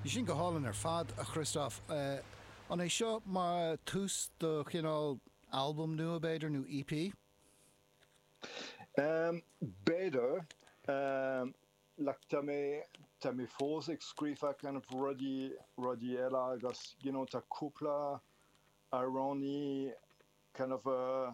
Sin go hálainn ar fad, a Christophe. An é seo mar tús do chineál albam nua, b'fhéidir, nó EP? B'fhéidir. Tá mé, tá mé fós ag scríofa kind of rudaí, rudaí eile agus you know tá cúpla amhránaí kind of a,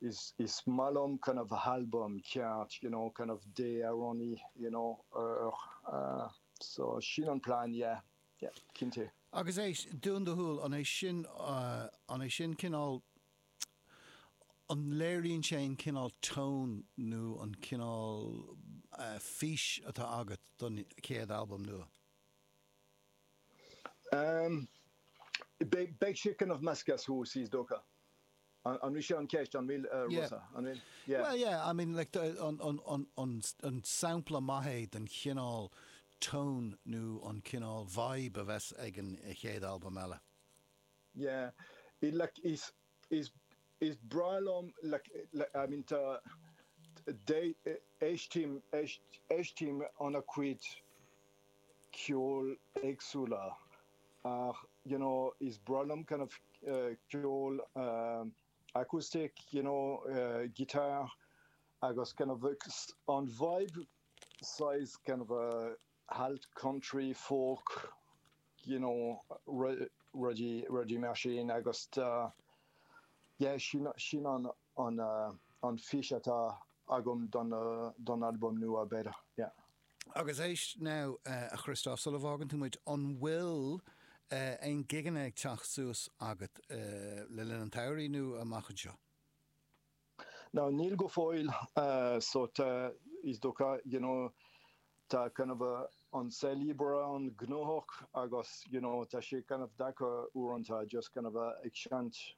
is is maith liom kind of albam ceart you know kind of deich amhránaí you know or so sin an plean yeah yeah cinnte. Agus éist, dún do shúil, an é sin, an é sin cineál, an léiríonn sé an cineál tone nó an cineál fís atá agat don chéad albam nua? Beidh sé kind of measctha suas is dócha. An bhfuil sé an cheist an bhfuil rud an bhfuil? Yeah. Well yeah, I mean like an sampla maith é den chineál tone nó an cineál vibe a bheas ag an chéad albam eile. Yeah, it like is is is breá liom like I mean tá éistím éistím le an-chuid ceoil éagsúla ach you know is breá liom kind of ceol acoustic you know guitar agus kind of an vibe saghas kind of alt country folk you know rudaí rudaí mar sin agus yeah sin sin an an an fís atá agam don don albam nua b'fhéidir yeah. Agus éist now, a Christophe, sula bhfágann tú muid, an bhfuil aon gigeanna ag teacht suas agat le linn an tsamhraidh nó amach anseo? Now, níl go fóill, so tá, is dócha, you know, tá kind of an saol oibre an-ghnóthach agus, you know, tá sé kind of deacair uaireanta just kind of ag seinnt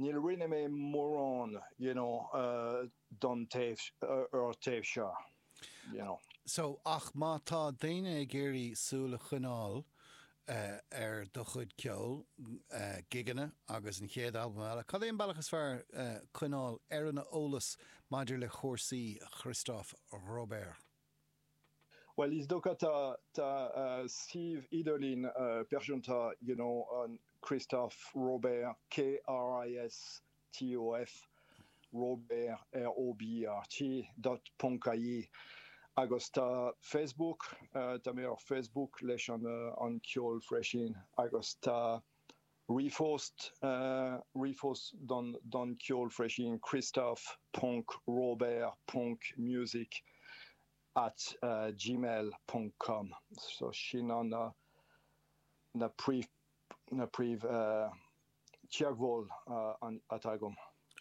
Ní rinne mé mórán you know don taobh seo you know. So ach má tá daoine ag iarraidh súil a choinneáil ar do chuid ceoil, gigeanna agus an chéad albam eile, cad é an bealach is fearr coinneáil ar an eolas maidir le cúrsaí Christophe Robert? Bhuel, is dócha, tá suíomh idirlín pearsanta you know Christophe Robert, k-r-i-s-t-o-f, Robert, R-o-b-e-r-t, dot, ponc, i-e, agus tá Facebook, tá mé ar Facebook leis an ceol freisin, agus tá Ríomhphost, ríomhphost don don ceol freisin Christophe ponc Robert ponc music at gmail ponc com so sin iad na príomh na príomh teagmháil atá agam.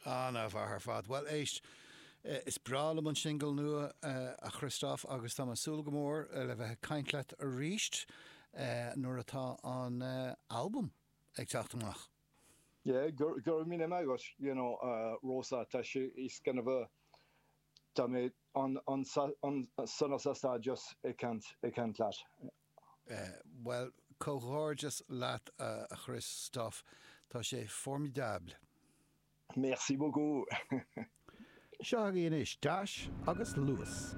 An-mhaith ar fad. Bhuel éist, is breá liom an singil nua, a Christophe, agus táim ag súil go mór le bheith ag caint leat arís nuair atá an albam ag teacht amach. Yeah, go raibh míle maith agat, you know, Rosa, tá sé, it's kind of a, tá mé an-sásta just ag caint leat. Bhuel, comhghairdeas leat a Christophe, tá sé formidable! Merci beaucoup! Seo agaibh anois teas agus luas.